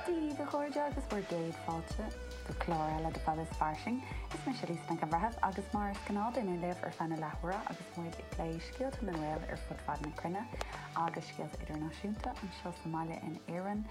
Dia daoibh a chairde agus bhur gcéad fáilte go clár eile de Fad is Fairsing. Is mise Lisa Nic an Bhreithimh agus mar is gnách táim libh ar feadh na leathuaire agus muid ag plé scéalta na nGael ar fud fad na cruinne agus scéalta idirnáisiúnta anseo sa mbaile in Éirinn,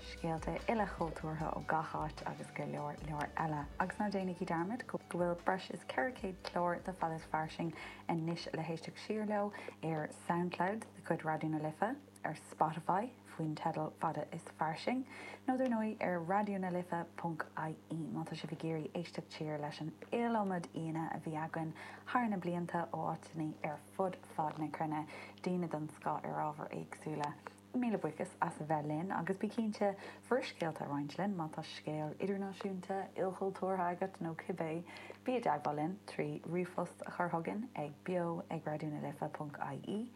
scéalta ilchultúrtha ó gach áit agus go leor leor eile. Agus ná déanaigí dearmad go bhfuil breis is 400 clár de Fad is Fairsing anois le héisteacht siar leo ar Soundcloud de chuid Raidió na Life, ar Spotify faoin teideal Fad is Fairsing, nó dar ndóigh ar raidionalife.ie má tá sibh ag iarraidh éisteacht siar leis an iliomad aíonna a bhí againn thar na blianta ó áiteanna ar fud fad na cruinne, daoine den scoth ar ábhair éagsúla. Míle buíochas as a bheith linn agus bí cinnte bhur scéalta a roinnt linn má tá scéal idirnáisiúnta, ilchultúrtha agat nó cibé. Bí i dteagmháil linn trí ríomhphost a chur chugainn ag beo@raidionalife.ie.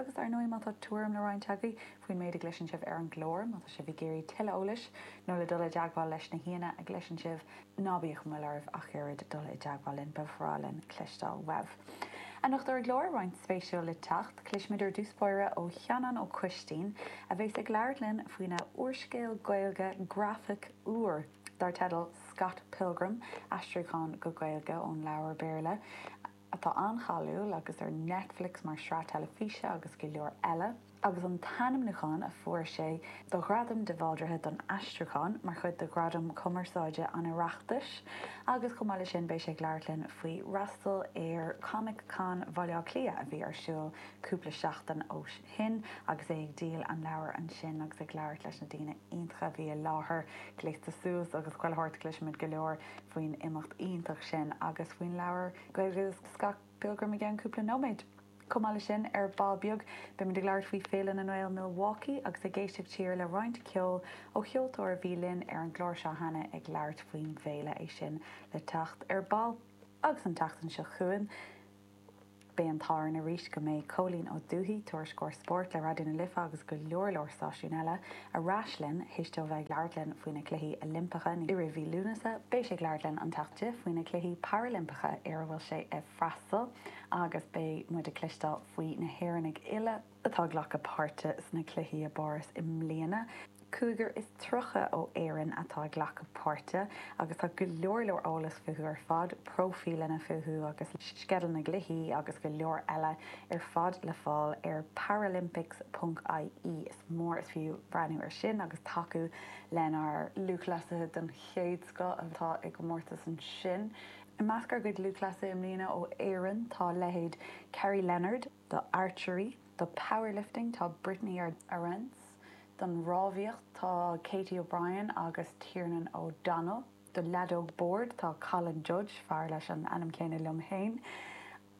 Agus, ar ndóigh, má tá tuairim le roinnt agaibh faoin méid a gcloiseann sibh ar an gclár, má tá sibh ag iarraidh tuilleadh eolais, nó le dul i dteagmháil leis na haíonna a gcloiseann sibh, ná bíodh aon mhoill oraibh ach oiread dul i dteagmháil linn, ba bhreá linn cloisteáil uaibh. Anocht ar an gclár, roinnt speisialta le teacht. Cloisfimid i dtús báire ó Sheanán Ó Coistín, a bheas ag labhairt linn faoina úrscéal Gaeilge grafach úr dar teideal Scott Pilgrim, aistriúchán go Gaeilge ón leabhar Béarla, atá an-cháiliúil agus ar Netflix mar shraith teilifíse agus go leor eile, agus an t-ainmniúchán a fuair sé do Ghradam de Bhaldraithe don Aistriúchán mar chuid de Ghradaim Chumarsáide an Oireachtais, agus chomh maith leis sin beidh sé ag labhairt linn faoi fhreastal ar Comic Con Bhaile Átha Cliath a bhí ar siúl cúpla seachtain ó shin agus é ag díol an leabhair ansin agus ag labhairt leis na daoine iontacha a bhí i láthair. Gléasta suas agus chuile shórt, cloisfimid go leor. faoin imeacht iontach sin agus faoin leabhar Gaeilge Scott Pilgrim i gceann cúpla nóiméad. Chomh maith leis sin, ar ball beag, beimid ag labhairt faoi Féile na nGael Milwaukee agus ag éisteacht siar le roinnt ceoil ó cheoltóir a bhí linn ar an gclár seo cheana ag labhairt faoin bhféile, é sin le teacht ar ball. Agus an tseachtain seo chugainn. Beidh an t-ádh orainn arís go mbeidh Cóilín Ó Dubhthaigh, Tuairisceoir Spóirt le Raidió na Life agus go leor leor stáisiún eile, ar ais linn théis dó bheith ag labhairt linn faoi na Cluichí Oilimpeacha i rith mhí Lúnasa. Beidh sé ag labhairt linn an tseachtain seo faoi na Cluichí Parailimpeacha ar a bhfuil sé ag freastal agus beidh muid ag cloisteáil faoi na hÉireannaigh uile, atá ag glacadh páirte sna cluichí i bPáras i mbliana. Cúigear is tríocha ó Éirinn atá ag glacadh páirte agus tá go leor leor eolas fúthu ar fad, próifíleanna fúthu agus sceideal na gcluichí agus go leor eile ar fad le fáil ar paralympics.ie. Is mór is fiú breathnú ar sin agus tacú lenár lúthchleasaithe den chéad scoth atá i gcomórtas ansin. I measc ár gcuid lúthchleasaithe i mbliana ó Éirinn tá leithéid Kerrie Leonard, do archery, do powerlifting tá Brittany Arendse, don rámhaíocht tá Katie O'Brien agus Tiernan O'Donnell, do leadóg boird tá Colin Judge, fear leis an ainm céanna liom féin,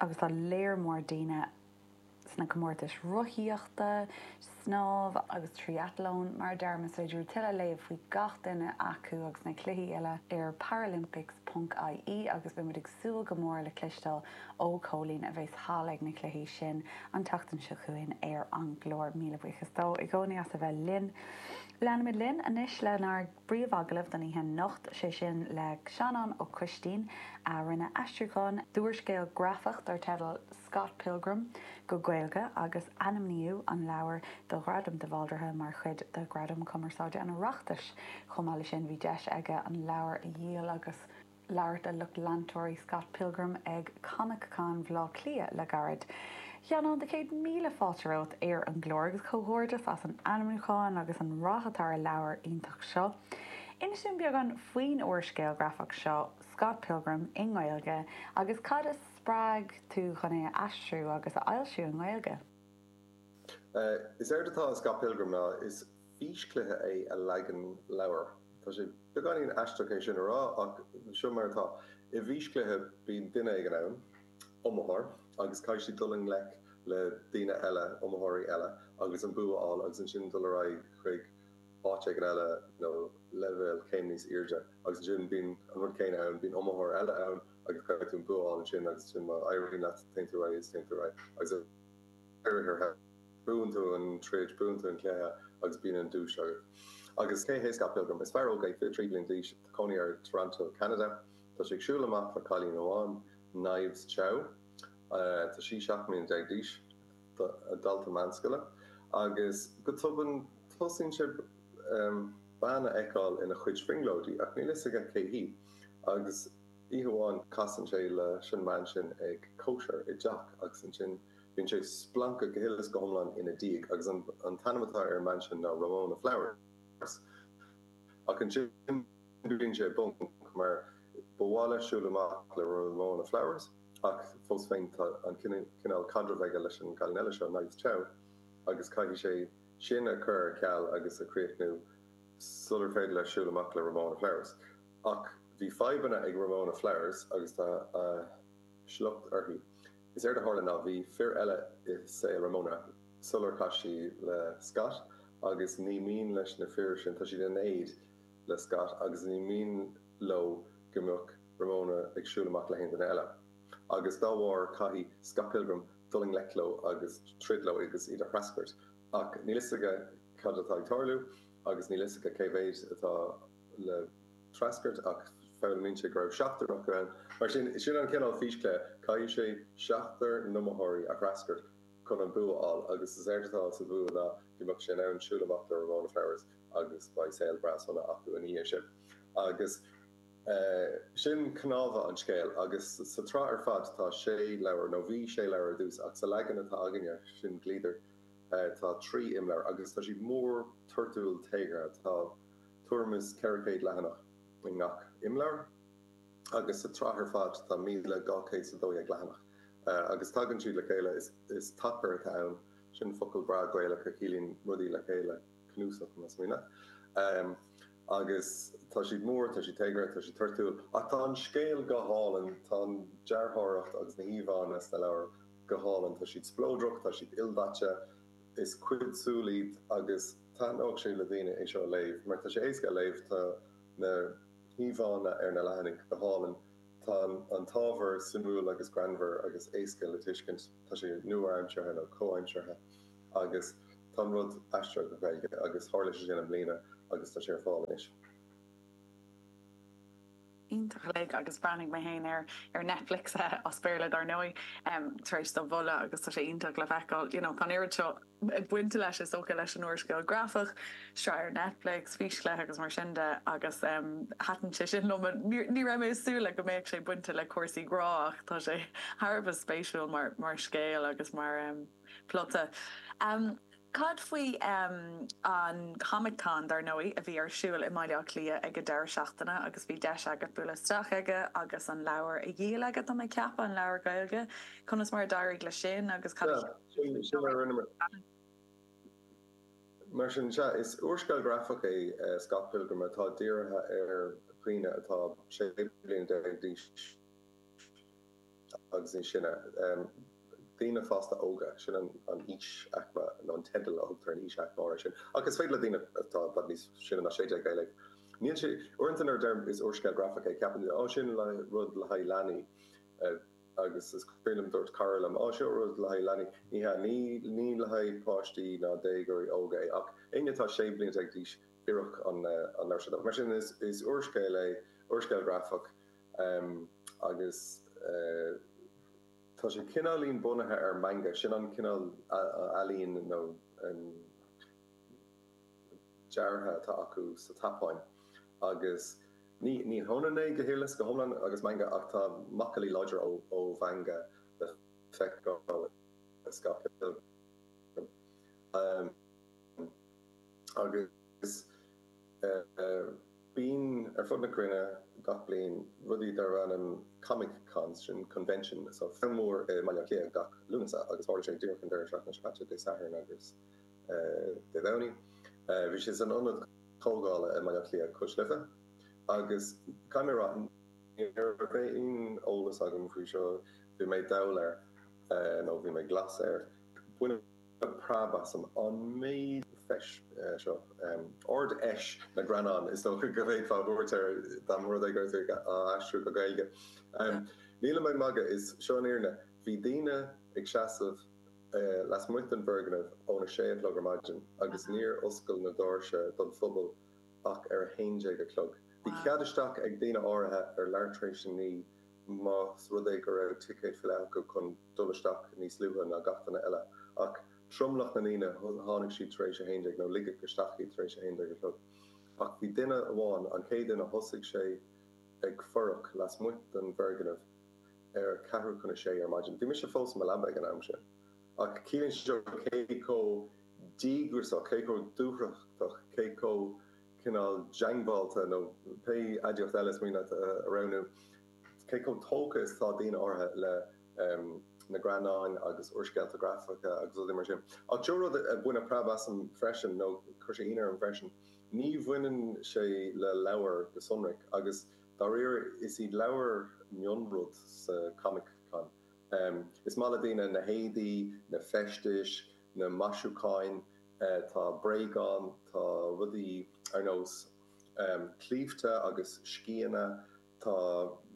agus tá léar mór daoine sna comórtais rothaíochta, snámha agus tríathlon, mar a deirim, is féidir tuilleadh a léamh faoi gach duine acu agus na cluichí uile ar paralympics ponc IE agus beimid ag súil go mór le cloisteáil ó Chóilín a bheas thall ag na cluichí sin an tseachtain seo chugainn ar an gclár. Míle buíochas dó i gcónaí as a bheith linn. Leanfaimid linn anois lenár. bpríomhagallamh don oíche anocht, 'sé sin le Seanán Ó Coistín, a rinne aistriúchán d'úrscéal grafach dar teideal Scott Pilgrim go Gaeilge, agus ainmníodh an leabhar do Ghradam de Bhaldraithe mar chuid de Ghradaim Foilsitheoireachta an Oireachtais. Chomh maith leis sin, bhí deis aige an leabhar a dhíol agus. labhairt le lucht leantóirí Scott Pilgrim ag ComicCon Bhleá Cliath le gairid. A Sheanáin, dhá chéad míle fáilte romhat ar an gclár agus comhghairdeas as an ainmniúchán agus an rath atá ar an leabhar iontach seo. Inis dom beagán faoin úrscéal grafach seo, Scott Pilgrim i nGaeilge, agus cad a spreag tú chun é a aistriú agus a fhoilsiú i nGaeilge. Is éard atá i Scott Pilgrim ná. físchluiche i leagan leabhair. Tá sé beagáinín aisteach é sin a rá, ach seo mar atá. I bhfíschluiche, bíonn duine éigin ann, iomaitheoir, agus caithfidh sé dul i ngleic le daoine eile, iomaitheoirí eile, agus an bua a fháil, agus ansin dul ar aghaidh chuig áit éigin eile nó leibhéal céim níos airde. Agus ansin bíonn an rud céanna ann, bíonn iomaitheoir eile ann, agus caithfidh tú an bua a fháil ansin, agus ansin má éiríonn leat, téann tú ar aghaidh is téann tú ar aghaidh, agus ar deireadh thiar thall. Buann tú an troid, buann tú an cluiche agus bíonn an duais agat. Agus cé hé Scott Pilgrim? Is fear óg é, 23 bliain d'aois, tá cónaí air i dToronto, Ceanada. Tá sé ag siúl amach le cailín amháin, Knives Chau. Tá sí 17 mbliana d'aois, dalta meánscoile. Agus go tobann tosaíonn sé bean a fheiceáil ina chuid brionglóidí, ach níl a fhios aige cé hí. Agus oíche amháin casann sé leis an mbean sin ag cóisir i dteach agus ansin. Bíonn sé splanctha go huile is go hiomlán ina diaidh, agus an t-ainm atá ar an mbean sin ná Ramona Flowers. Ach ansin bíonn sé i bponc, mar ba mhaith leis siúl amach le Ramona Flowers, ach fós féin tá an cineál caidrimh aige leis an gcailín eile seo, Knives Chau, agus caithfidh sé sin a chur ar ceal agus a chríochnú sular féidir leis siúl amach le Ramona Flowers. Ach bhí fadhbanna ag Ramona Flowers, agus tá a shliocht uirthi. Is éard a tharla ná bhí fir eile i saol Ramona sular chas sí le Scott agus ní mian leis na fir sin, tá siad in éad le Scott agus ní mian leo go mbeadh Ramona ag siúl amach le haon duine eile agus dá bharr caithfidh Scott Pilgrim dul i ngleic leo agus troid leo agus iad a threascairt ach níl a fhios aige cad atá ag tarlú agus níl a fhios aige cé mhéid atá le treascairt, ach foghlaimíonn sé go raibh seachtar acu ann. Mar sin, sin an cineál físchluiche, caithfidh sé seachtar n-iomaitheoirí a threascairt chun an bua a fháil, agus is éard atá sa bhua ná go mbeadh sé in ann siúl amach le Ramona Flowers agus beidh saol breá sona acu ina dhiaidh sin. Agus sin cnámha an scéil, agus sa tsraith ar fad tá sé leabhar, nó bhí sé leabhar ar dtús, ach sa leagan atá againne, sin Gliadar, tá trí imleabhar, agus tá siad mór, toirtiúil, téagartha. Tá. tuairim is 400 leathanach i ngach imleabhar, agus sa tsraith ar fad tá 1,212 leathanach, agus tagann siad le chéile, is tacar atá ann, sin focal breá Gaelach a chiallaíonn rudaí le chéile, cnuasach, más mian leat, agus tá siad mór, tá siad téagartha, tá siad toirtiúil, ach tá an scéal go hálainn, tá an dearthóireacht agus na híomhánna sna leabhair go hálainn, tá siad spleodrach, tá siad ildaite. Is cuid súl iad agus taitneodh sé le daoine é seo a léamh mar tá sé éasca a léamh, tá na híomhánna ar na leathanaigh go hálainn, tá an t-ábhar suimiúil agus greannmhar agus éasca le tuiscint, tá sé nua-aimseartha nó comhaimseartha agus tá an rud aistrithe go Gaeilge agus tharla sé sin i mbliana agus tá sé ar fáil anois. iontach uilig agus bhreathnaigh mé féin air ar Netflix, as Béarla dar ndóigh, tar éis do mholadh agus tá sé iontach le feiceáil, you know, tá an oiread seo bainte leis, is dócha, leis an úrscéal grafach, sraith ar Netflix, físchluiche agus mar sin de agus thaitin sé sin liom. Ní raibh mé ag súil go mbeadh sé bainte le cúrsaí grá ach tá sé thar a bheith spéisiúil mar scéal agus mar. Plota. Cad faoi an Comic Con, dar ndóigh, a bhí ar siúl i mBaile Átha Cliath ag an deireadh seachtaine agus bhí deis agat bualadh isteach aige agus an leabhar a dhíol aige, tá mé ag ceapadh, an leabhar Gaeilge. Conas mar a d'éirigh leis sin agus cad a cheap tú faoin leabhar? Sea, sin a rinne mé. Mar sin, sea, is úrscéal grafach é Scott Pilgrim atá dírithe ar dhaoine atá 16 bliana d'aois. agus níos sine, daoine fásta óga, sin an an aois-aicme nó an teideal a thugtar ar an aois-aicme áirithe sin, ach is féidir le daoine atá i bhfad níos sine ná sé déag é a léamh. Níl sé. Uaireanta nuair a deirim is úrscéal grafach é ceapann daoine, Ó sin rud le haghaidh leanaí agus is cuimhin liom dúirt cara liom, Ó seo rud le haghaidh leanaí. Ní hea, ní ní le haghaidh páistí ná déagóirí óga é ach éinne atá sé bliana déag d'aois, oirfeadh an leabhar seo dóibh. Mar sin is úrscéal é, úrscéal grafach. Em. agus eh. tá sé cineáilín bunaithe ar manga, sin an cineál ealaín nó em. dearadh atá acu sa tSeapáin. Agus ní ní hionann é go huile is go hiomlán agus manga ach tá macallaí láidre ó ó mhanga le feiceáil i Scott Pilgrim. Em. agus. Bíonn ar fud na cruinne gach bliain rudaí darb ainm Comic Cons, sin convention nó feis, ceann mór i mBaile Átha Cliath gach Lúnasa agus tharla sé díreach an deireadh seachtaine seo caite, Dé Sathairn agus Dé Domhnaigh. Bhí sé san ionad comhdhála i mBaile Átha Cliath, Cois Life, agus caithfidh mé a rá ní raibh aon eolas agam faoi seo, bhí mé dall air nó bhí mé glas air. Baineadh. preab asam an méid feis seo. Ard-Fheis na nGreannán is dócha go bhféadfá a thabhairt air dá mba rud é gurbh fhéidir é a aistriú go Gaeilge. Nílim ag magadh, is seo an fhírinne. Bhí daoine ag seasamh lasmuigh den bhfoirgneamh óna sé a chlog ar maidin agus níor oscail na doirse don phobal ach ar a haon déag a chlog. Bhí cead isteach ag daoine áirithe ar leathuair tar éis a naoi. más rud é go raibh ticéid faighte acu chun dul isteach níos luaithe ná gach duine eile. Ach tromlach na ndaoine, tháinig siad tar éis a haon déag, nó ligeadh isteach iad tar éis a haon déag a chlog. Ach bhí duine amháin, an chéad duine, thosaigh sé ag fuireach lasmuigh den bhfoirgneamh ar a ceathrú chun a sé ar maidin. Bhí mise fós i mo leaba ag an am sin. Ach ciallaíonn seo cé chomh díograiseach, cé chomh dúthrachtach, cé chomh. cineál diongbháilte, nó pé aidiacht eile is mian leat a roghnú, cé chomh tógtha is atá daoine áirithe le na greannáin agus úrscéalta grafacha agus rudaí mar sin. Ach seo rud a bhain preab asam freisin, nó chuir sé ionadh orm freisin, ní bhaineann sé le leabhair go sonrach, agus dáiríre is iad leabhair mionrud sa Comic-Con. Is maith le daoine na héadaí, na feistis, na maisiúcháin, Tá bréagáin, tá rudaí ar nós claímhte agus sceana, tá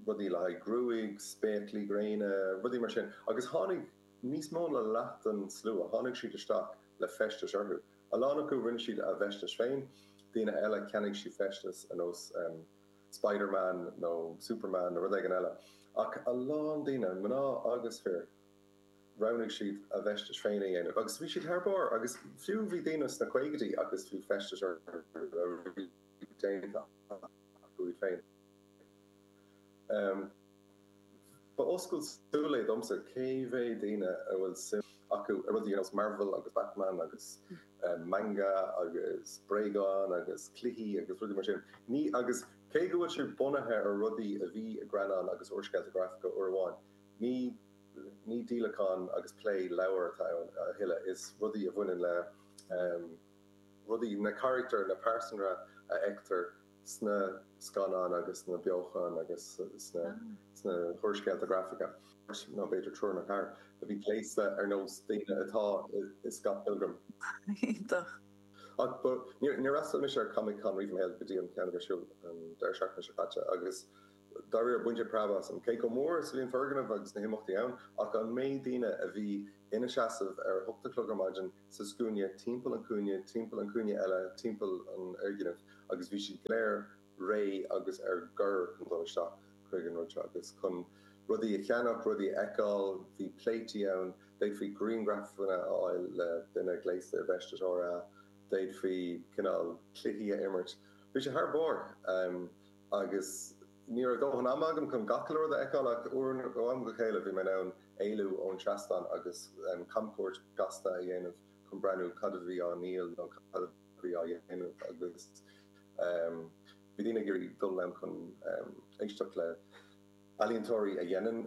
rudaí le haghaidh gruaige, spéaclaí gréine, rudaí mar sin, agus tháinig níos mó na leath den slua, tháinig siad isteach le feistis orthu. A lán acu, rinne siad a bhfeistis féin, daoine eile, cheannaigh siad feistis ar nós Spider-Man nó Superman nó rud éigin eile. Ach a lán daoine, mná agus fir, roghnaigh siad a bhfeistis féin a dhéanamh agus bhí siad thar barr agus fiú bhí daoine sna caogaidí agus bhí feistis orthu a bhí déanta acu iad féin. Ba oscailt súl é domsa cé mhéad daoine a bhfuil suim acu i rudaí ar nós Marvel agus Batman agus manga agus bréagáin agus cluichí agus rudaí mar sin. Ní agus cé go bhfuil sé bunaithe ar rudaí a bhí i i ngreannáin agus úrscéalta graifice uair amháin, ní. Ní díolachán agus plé leabhar atá ann a thuilleadh, is rudaí a bhaineann le rudaí, na carachtair, na pearsana a fheictear sna scannáin agus sna beochain agus sna húrscéalta grafacha. Bhí b'fhéidir triúr nó ceathrar a bhí gléasta ar nós daoine atá i Scott Pilgrim. Iontach. Ach níor fhreastail mise ar Comic Con riamh i mo shaol go dtí an ceann a bhí ar siúl an deireadh seachtaine seo caite agus, Dáiríre, baineadh preab asam cé chomh mór is a bhí an foirgneamh agus na himeachtaí ann, ach an méid daoine a bhí ina seasamh ar a hocht a chlog ar maidin sa scuaine timpeall an chúinne, timpeall an chúinne eile, timpeall an fhoirgnimh, agus bhí siad go léir réidh agus ar bior chun dul isteach chuig an rud seo agus chun rudaí a cheannach, rudaí a fheiceáil. Bhí pléití ann, d'fhéadfaí grianghrafanna a fháil le duine gléasta i bhfeisteas RA, d'fhéadfaí cineál cluichí a imirt. Bhí sé thar barr! agus ní raibh dóthain ama agam chun a lán de a fheiceáil ach uair ó am go chéile bhí mé in ann éalú ón seastán agus camchuairt ghasta a dhéanamh chun breathnú cad a bhí á ndíol nó cad a bhí á dhéanamh agus bhí daoine ag iarraidh dul ann chun éisteacht le healaíontóirí a dhéanann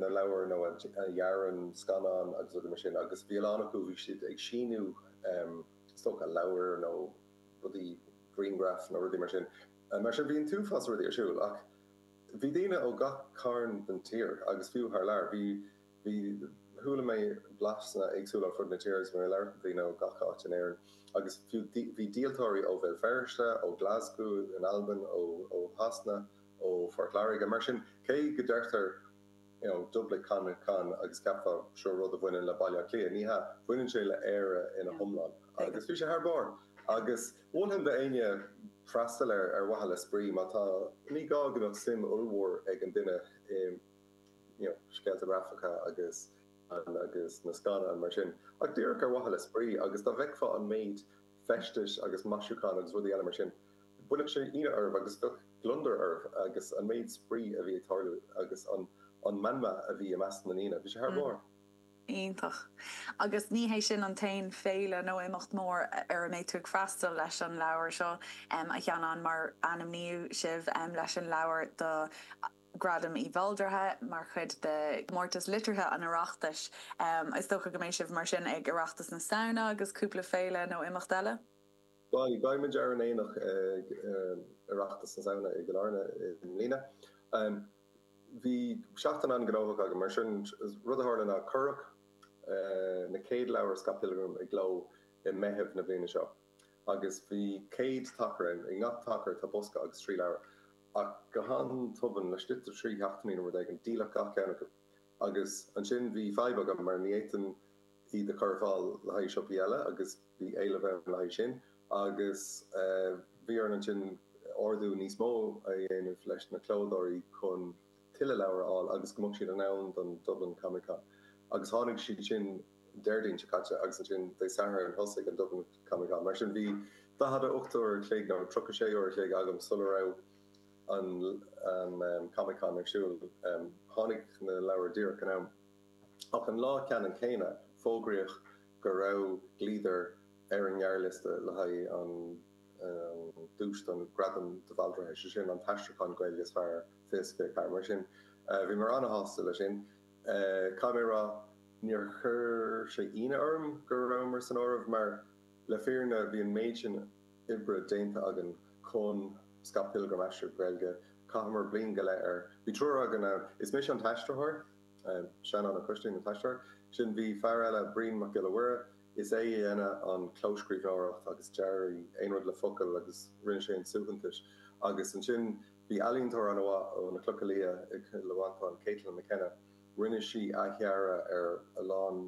na leabhair nó a dhearann scannáin agus rudaí mar sin agus bhí a lán acu, bhí siad ag síniú is dócha leabhair nó rudaí grianghraif nó rudaí mar sin. Mar sin, bhí an t-uafás rudaí ar siúl. Ach bhí daoine ó gach carn den tír, agus fiú thar lear. Bhí, bhí, chuala mé blaseanna éagsúla ar fud na tíre agus mé ag labhairt le daoine ó gach áit in Éirinn. Agus fiú, bhí díoltóirí ó Bhéal Feirste, ó Glasgow in Albain, ó, ó Shasana, ó Phort Láirge. Mar sin, cé go ndeirtear, you know, Dublin Comic Con agus cheapfá seo rud a bhaineann le Baile Átha Cliath, ní hea, baineann sé le Éire ina hiomlán. Agus bhí sé thar barr. Agus. Mholfainn d'éinne freastal air ar mhaithe le spraoi, má tá. Ní gá go mbeadh suim ollmhór ag an duine i scéalta grafacha agus na scannáin, mar sin, ach díreach ar mhaithe le spraoi, agus dá bhfeicfeá an méid feistis agus maisiúchán agus rudaí eile mar sin, bhainfeadh sé ionadh oraibh agus bheadh gliondar oraibh, agus an méid spraoi a bhí ag tarlú agus an meanma a bhí i measc na ndaoine, bhí sé thar barr. Iontach. Agus ní hé sin an t-aon féile nó imeacht mór ar a mbeidh tú ag freastal leis an leabhar seo, a Sheanáin, mar ainmníodh sibh leis an leabhar do Ghradam Uí Bhaldraithe mar chuid de Chomórtas Liteartha an Oireachtais. Is dócha go mbeidh sibh mar sin ag Oireachtas na Samhna agus cúpla féile nó imeacht eile? Beidh. Beidh muid ar an aonach ag Oireachtas na Samhna i gCill Airne i mbliana. Bhí seachtain an-ghnóthach agam, mar sin. Rud a tharla ná cuireadh na chéad leabhair Scott Pilgrim i gcló i Meitheamh na bliana seo, agus bhí céad tacar ann. I ngach tacar tá bosca agus trí leabhar, ach go han-tobann, laistigh de thrí sheachtainí nó rud éigin, díoladh gach ceann acu. Agus ansin bhí fadhb agam, mar ní fhéadfainn iad a chur ar fáil le haghaidh siopaí eile, agus bhí éileamh ann le haghaidh sin. Agus bhí orainn ansin ordú níos mó a dhéanamh leis na clódóirí chun tuilleadh leabhar a fháil agus go mbeadh siad in am don Dublin Comic Con. Agus tháinig siad sin Déardaoin seo caite, agus ansin Dé Sathairn thosaigh an Dublin Comic Con. Mar sin bhí 48 uair a chloig nó 36 uair a chloig agam sula raibh an Comic-Con ar siúl, tháinig na leabhair díreach in am. Ach an lá ceannann céanna, fógraíodh go raibh Gliadar ar an ngearrliosta le haghaidh an duais don Ghradam de Bhaldraithe, sin an t-aistriúchán Gaeilge is fearr, ficsean. Mar sin. Bhí mé an-shásta le sin, caithfidh mé a rá. Níor chuir sé ionadh orm go rabhamar san áireamh, mar le fírinne bhí an méid sin oibre déanta againn chun Scott Pilgrim a aistriú go Gaeilge, chaitheamar bliain go leith air. Bhí triúr againn ann. Is mise an t-aistritheoir, Seanán Ó Coistín an t-aistritheoir, ansin bhí fear eile, Brian Mac Giolla Mhuire, is é a dheineadh an clóscríbhneoireacht agus dearadh aon rud le focail agus rinne sé na suaitheantais agus ansin bhí ealaíontóir an-mhaith ó na Clocha Liath i gCill Mhantáin, Caitlin McKenna, rinne sí athdhearadh ar a lán.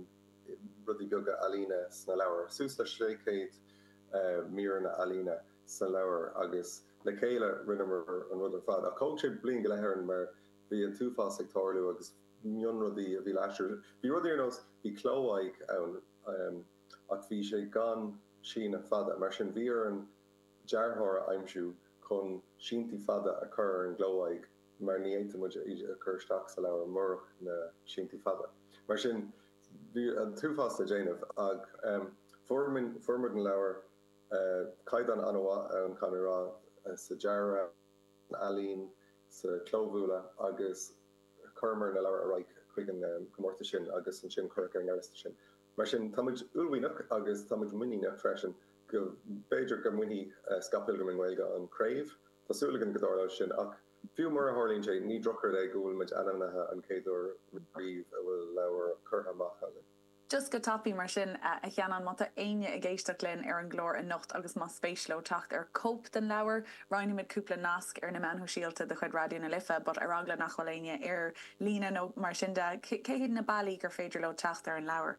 rudaí beaga ealaíne sna leabhair, suas le sé chéad mír ealaíne sna leabhair, agus le chéile rinneamar an rud ar fad. Ach thóg sé bliain go leith orainn mar bhí an t-uafás ag tarlú agus mionrudaí a bhí le haistriú. Bhí rudaí ar nós, bhí cló aghaidh ann ach bhí sé gan síneadh fada, mar sin bhí orainn dearthóir a aimsiú chun síntí fada a chur ar an gcló aghaidh. mar ní fhéadfadh muid é a chur isteach sa leabhar murach na síntí fada. Mar sin, bhí an t-uafás le déanamh, ach fuair muid na leabhair. Caighdeán an-mhaith ann, caithfidh mé rá, sa dearadh, san ealaín, sa chlóbhualadh, agus chuireamar na leabhair ar aghaidh chuig an gcomórtas sin agus ansin cuireadh ar an ngearrliosta sinn. Mar sin, tá muid uaillmhianach agus tá muid muiníneach freisin go mb'fhéidir go mbainfidh Scott Pilgrim i nGaeilge an chraobh. Tá súil againn go dtarlóidh sin ach fiú mura dtarlaíonn sé, ní drochrud é go bhfuil muid ainmnithe an chéad uair riamh a bhfuil leabhar curtha amach againn. Just go tapaidh mar sin, a Sheanáin, má tá éinne ag éisteacht linn ar an gclár anocht agus más spéis leo teacht ar chóip den leabhar, Roinnfimid cúpla nasc ar na meáin shóisialta de chuid Raidió na Life, but ar eagla nach bhfuil éinne ar líne nó mar sin, cé hiad na bealaí gur féidir leo teacht ar an leabhar?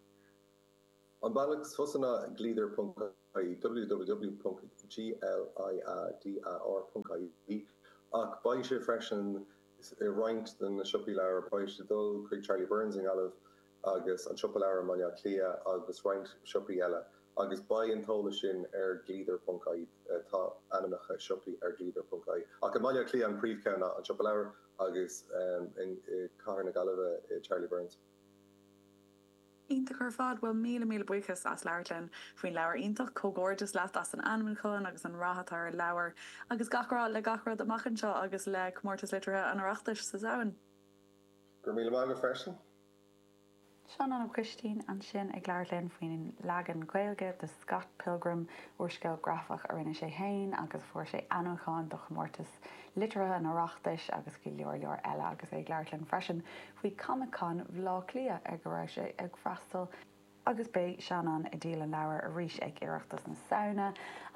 An bealach is fusa ná ag gliadar.ie, www.gliadar.ie, ach beidh sé freisin i roinnt de na siopaí leabhar, beidh sé ag dul chuig Charlie Byrne's i nGaillimh, agus an Siopa Leabhar i mBaile Átha Cliath agus roinnt siopaí eile, agus beidh an t-eolas sin ar Gliadar ponc ie. Tá ainmneacha siopaí ar Gliadar ponc ie, ach i mBaile Átha Cliath an príomhcheann ná an Siopa Leabhar agus Cathair na Gaillimhe Charlie Byrne's. Iontach ar fad! Bhuel, míle míle buíochas as labhairt linn faoin leabhar iontach. Comhghairdeas leat as an ainmniúchán agus an rath atá ar an leabhar, agus gach rath le gach rud amach anseo agus le Comórtas Liteartha an Oireachtais sa Samhain. Go raibh míle maith agat freisin. Seanán Ó Coistín ansin ag labhairt linn faoin leagan Gaeilge de Scott Pilgrim, úrscéal grafach a rinne sé féin agus fuair sé ainmniúchán do chomórtas liteartha an Oireachtais agus go leor leor eile agus é ag labhairt linn freisin faoi Comic Con Bhaile Átha Cliath ar go raibh sé ag freastal agus beidh Seanán ag díol an leabhair arís ag Oireachtas na Samhna,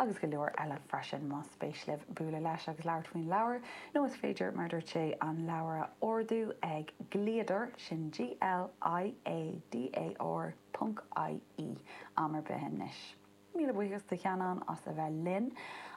agus go leor eile freisin. Más spéis libh bualadh leis agus labhairt faoin leabhar, nó is féidir, mar dúirt sé, an leabhar a ordú ag Gliadar, sin G-L-I-A-D-A-R ponc I-E, am ar bith anois. Míle buíochas do Sheanán as a bheith linn.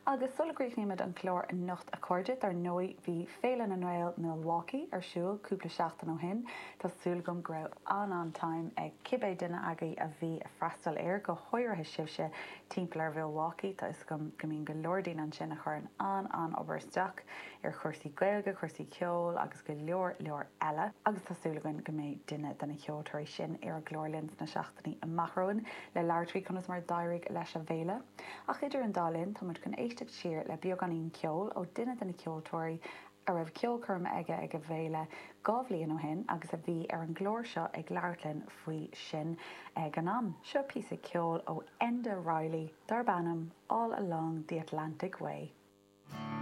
Agus sula gcríochnaímid an clár anocht a chairde, dar ndóigh bhí Féile na nGael, Milwaukee, ar siúl cúpla seachtain ó shin. Tá súil agam go raibh an-an-time ag cibé duine agaibh a bhí ag freastal air, go háirithe sibhse timpeall ar Mhilwaukee, tá 'fhios agam go mbíonn go leor daoine ansin a chuireann an-an-obair isteach ar chúrsaí Gaeilge, cúrsaí ceoil agus go leor leor eile. Agus tá súil againn go mbeidh duine de na ceoltóirí sin ar an gclár linn sna Ní amach romhainn le labhairt faoi conas mar a d'éirigh leis an bhféile. Ach idir an dá linn, tá muid chun éisteacht siar le beagáinín ceoil ó duine de na ceoltóirí a raibh ceolchoirm aige ag an bhféile dhá bhliain ó shin agus a bhí ar an gclár seo ag labhairt linn faoi sin ag an am. Seo píosa ceoil ó Enda Reilly darb ainm All Along the Atlantic Way.